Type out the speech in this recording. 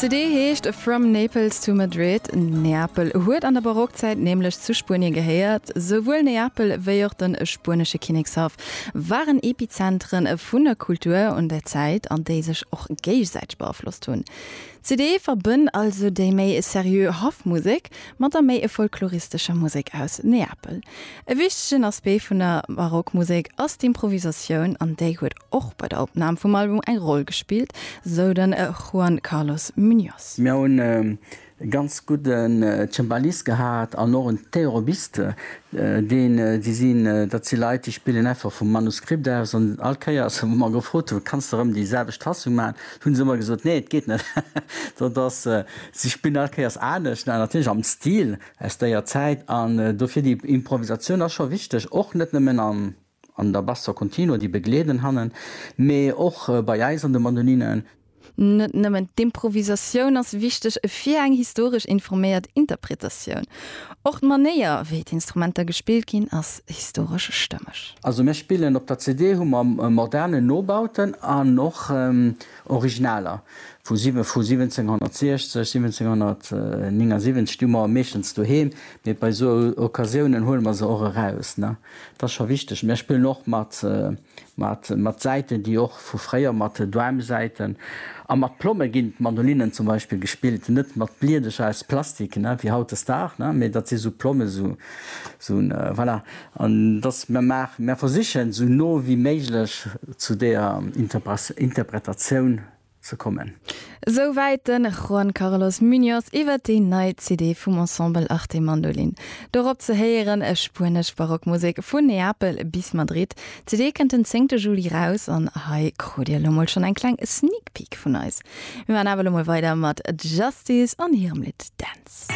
CD heescht From Naples to Madrid. Neapel huet an der Barockzäit nämlech zu Spuenien gehéiert. Souwuel Neapel wéi och de spuenesche Kinnekshaff waren Epizentere vun der Kultur un der Zäit, an déi sech och géigesäiteg beaflosst hunn. CD verbënnt also déi méi seriö Haffmusek mat der méi folkloristescher Musek aus Neapel. E wichtegen Aspekt vun der Barockmusek ass d'Improvisatioun an déi huet och bei der Opnam vum Album eng Roll gespillt, sou den Juan Carlos Muñoz. Mir hunn e ganz gudden Cembalist gehat an och en Theorobiste, deen, déi sinn, dat si Leit, déi spillen einfach vum Manuskript aus. An all Kéier, wou mer gefrot hunn, Kanns de erëm déi selwecht Fassung maachen? hu se ëmmer gesot, Nee, et geet net. Dat ass, si spillen all Kéiers anescht, natierlech am Stil Aus déier Zäit an dofir déi Improvisatioun ass scho wichteg, och net nëmmen an der Basso Continuo, déi begleeden hannen, mee och bei eis an de Mandolinen. Net nëmmen d'Improvisatioun ass wichteg fir eng historesch informéiert Interpretatioun, och d'Manéier, wéi d'Instrumenter gespillt ginn, ass historesch stëmmeg. Also mir spillen op der CD hu mer moderne Nobauten an och Originaler vu 1760, 1779 hu mer meeschtens doheem, mee bei esou Occasiounen huele mer se och eraus. Dat ass scho wichteg. Mer spillen och mat Säiten, déi och vu fréier, mat Doumsäiten a mat Plomme ginn d'Mandolinnen zum Beispill gespillt, net mat Bliedercher aus Plastik wéi hautdesdaags, mee dat si sou Plommen, voilà. An dass mer maachen, mer versichen, esou no wéi méiglech zu deeër Interpretatioun ze kommen. Esou wäit de Juan Carlos Muñoz iwwer déi nei CD vum Ensemble Arte Mandolin. Dorop ze héieren, spuenesch Barockmusek vun Neapel bis Madrid. D'CD kënnt den zéngte Juli raus an hei krut Dir elo mol schonn eng kleng Sneak Peek vun eis. Mir maachen awer elo mol weider mat Justice an hirem Lidd Dance.